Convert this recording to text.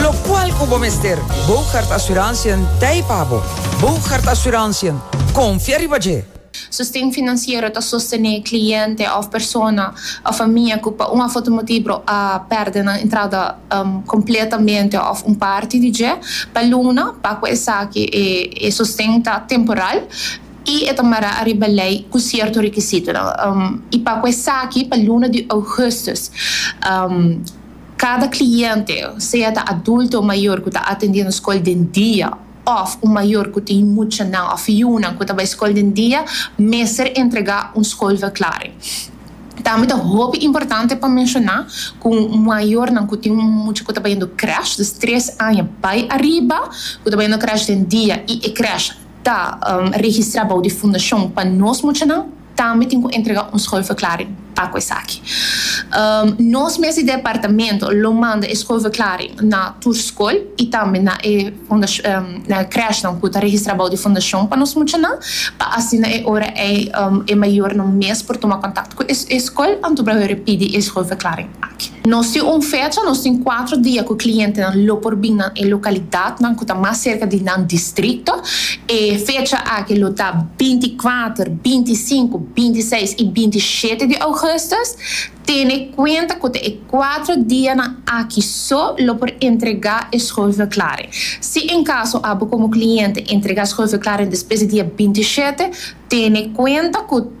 Locual cu bo mester Bogaert Assurantiën t'ey pa bo. Bogaert Assurantiën, confia riba dje! Sosten financiero ta sostené cliente of persona of famia cu pa un of otro motibro a perde nan entrada completamente of un parti di dje. Pa Luna, pa cu esaki e sosten ta temporal y e ta mará ariba ley cu cierto requisitonan. Y pa cu esaki pa luna di augustus. Kada kliente, sea ta adulto o mayor ku ta atendé nos skol den dia òf un mayor ku tin muchanan òf yunan ku ta bai skol den dia, mester entregá un skolverklaring. Tambe ta hopi importante pa menshoná ku mayornan ku tin un mucha ku ta bayendo krèsh, dus tres aña bai ariba, ku ta bayendo krèsh den dia i e krèsh ta registrá bou di fundashon pa nos muchanan, Tambe tin cu entrega un schoolverklaring pa cu esaki. Nos mes di departamento lo manda e schoolverklaring na tur school y tambe na e crèshnan cu ta registra bou di fundacion pa nos muchanan, pa asina e ora ey e mayornan mes por tuma contacto cu e school anto por a hore pidi e schoolverklaring. Nos tin un fecha, nos tin kuatro dia ku klientenan lo por bin na e lokalidatnan ku ta mas serka di nan distrikto. E fecha aki lo ta binti kuater, binti sinku, binti seis i binti shete di ougùstus. Tene kuenta ku ta e kuatro dianan aki so lo por entregá e skulverklaring. Si en kaso abo komo kliente entregá skulverklaring despues di dia binti shete, tene kuenta ku.